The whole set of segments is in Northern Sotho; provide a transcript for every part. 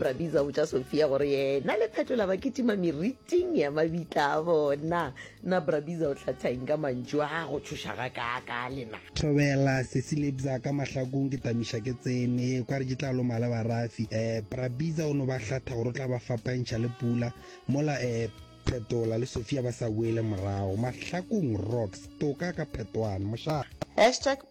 brabiza o botša sophia gore yena le phetola ba ketima meriting ya mabitla a bona na brabiza o tlhathang ka mantšu a go tšhoša ga kaaka lena thobela sesilebza ka mahlakong ke tamiša ke tsene kwa re ke tla loma le barafi um brabiza o no ba hlatha gore o tla ba fapantšha le pula mola um phetola le sophia ba sa boele morago mahlakong rocks toka ka phetoane mošaa Hashtag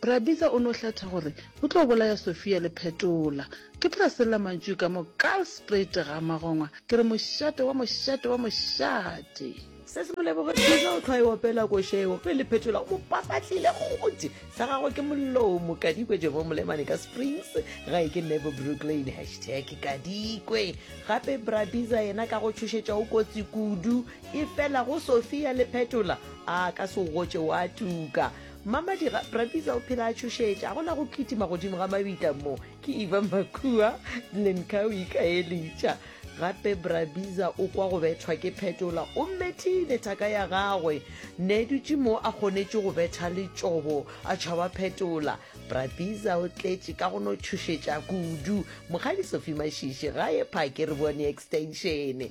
Bra Bitsa o no hlatha gore o tlo bolaya Sofia le Phetola. Ke tla sella mantšu ka mo Kalsprate ga magongwa ke re mošate wa mošate wa mošate. Se se moleboge Bitsa o tlhwa e opela koša eo ge le Phetola o mo papatlile gothe sa gagwe ke molomo. Kadikwe Jebo Molemane ka Springs gae ke Nebo Brooklyn hashtag Kadikwe. Gape Bra Bitsa yena ka go tšhošetša o kotsi kudu efela go Sofia le Phetola a ka se o gotše wa tuka. Mmamadira, Bra Diesel phela a tšhošetša, a gona go kitima godimo ga mabita mo. Ke Eva Makua, Lenka o ikaelitša. Gape Bra Biza o kwa go bethwa ke phetola, o mmethile thaka ya gagwe. Ne dutše mo a kgonetše go betha letšobo, a tšhaba phetola. Bra Biza o tletše ka go no tšhošetša kudu. Mokgadi Sophie Mashiši, gae phake re bone extenšene.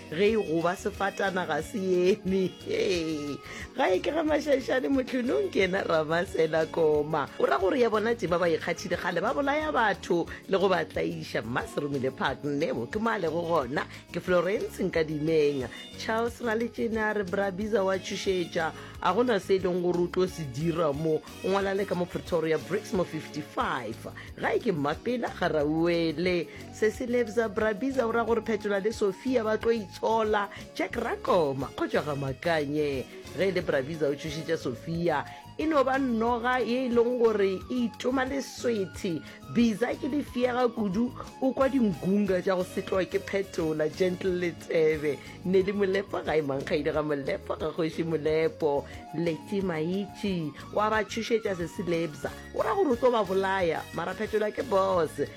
ge e goba sefatana ga se eme ga e ke ga mašaišane motlhonong ke ena ramasela koma o ra gore ya bona tse ba ba ikgathile gale ba bolaya batho le go ba tlaiša mma seromile park nebo ke male go gona ke florence nka dimeng charles ra letsena re brabiza wa tšhošetša a gona se e leng gore o tlo se dira mo o ngwala le ka mo pretoria bricks mo 55 ga e ke mmapela ga rauele Sesi Lebza Brabiza o ra gore Phetola le Sofia ba tlo itshola. Jack Rakoma o tšwa ga Makanye. Ge e le Brabiza o tšhošetša Sofia e no ba noga ye e leng gore e itoma leswethe. Biza ke lefiega kudu o kwa dingunga tša go setloa ke Phetola. Gentle Letsebe ne le Molepo ga e mankgaile ga Molepo ga kgoši Molepo. Leti Maitši wa ba tšhošetša Sesi Lebza o ra gore o tlo ba bolaya mara Phetola ke boss.